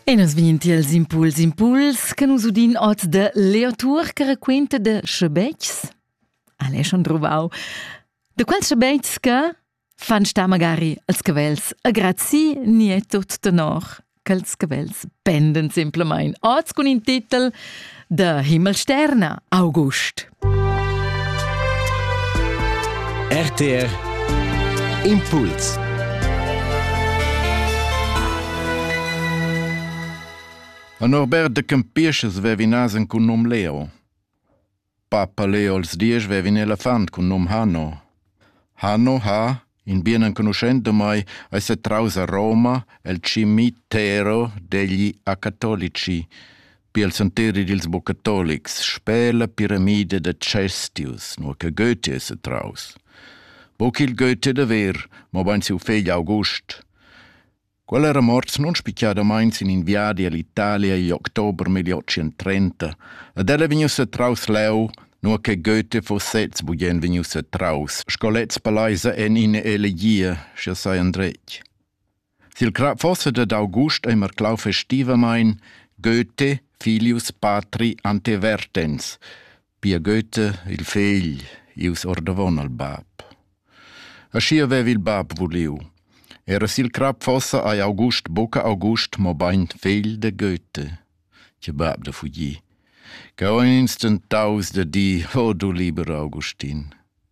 E nos vegnin tiels impuls impuls che nus udin oz de Leo Tour che raquenta de schebetgs. Alle schon druvau. De quels schebetgs che fan sta magari als cavels agrazzi ni è tut tenor ch'els cavels penden simplamain oz cun in titel Der Himmelsterner August. RTR Impuls A Norbert de Campiches vevinas cun num Leo. Papa Leo als dies vevin elefant cun num Hanno. Hanno ha In bien enconuschent da mai ais stat traus a Roma el cimitero degli acatolici, pil santeri dils bucatolics, sper la piramida da Cestius, nua che Goethe es stat traus. Buc il Goethe da ver, mobein siu fegl August. Quella era morts non spicciadamain sin in viadi all'Italia igl october 1830, ed ella è vegnussa traus leu, nua che Goethe fo sez bugen vegnussa traus, sco lez palaisa en ina elegia, sche sai andretg. Sil crap fosse dad August immer clau festivamain Goethe filius patri ante vertens, Pia Goethe, il fegl, ius ordavon al bab. Aschia vev il bab vuliu. Era sil crap fossa ei August buca August, mobein fegl de Goethe, che bab da fugir. Che ho instant daus da di, o du liber Augustin.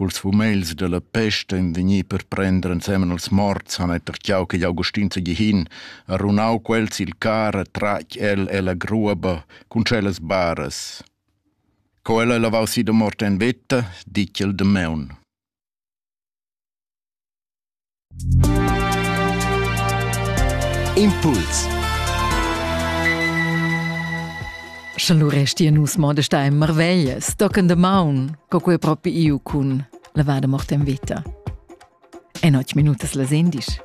Culs fumegls dalla pest ein vegni per prender ensemen als morts han ei tertgau ch'igl Augustin Segihin ha runau quels sil car e tratg el ella gruoba cun tschellas baras. Co el ei lavau si da mort en veta, ditg el damaun. Impuls Scha lu restia nus modesta e marveglia, stocken de maun, co quei propi iu cun lavada morta en vita. En och minutas la sendisch.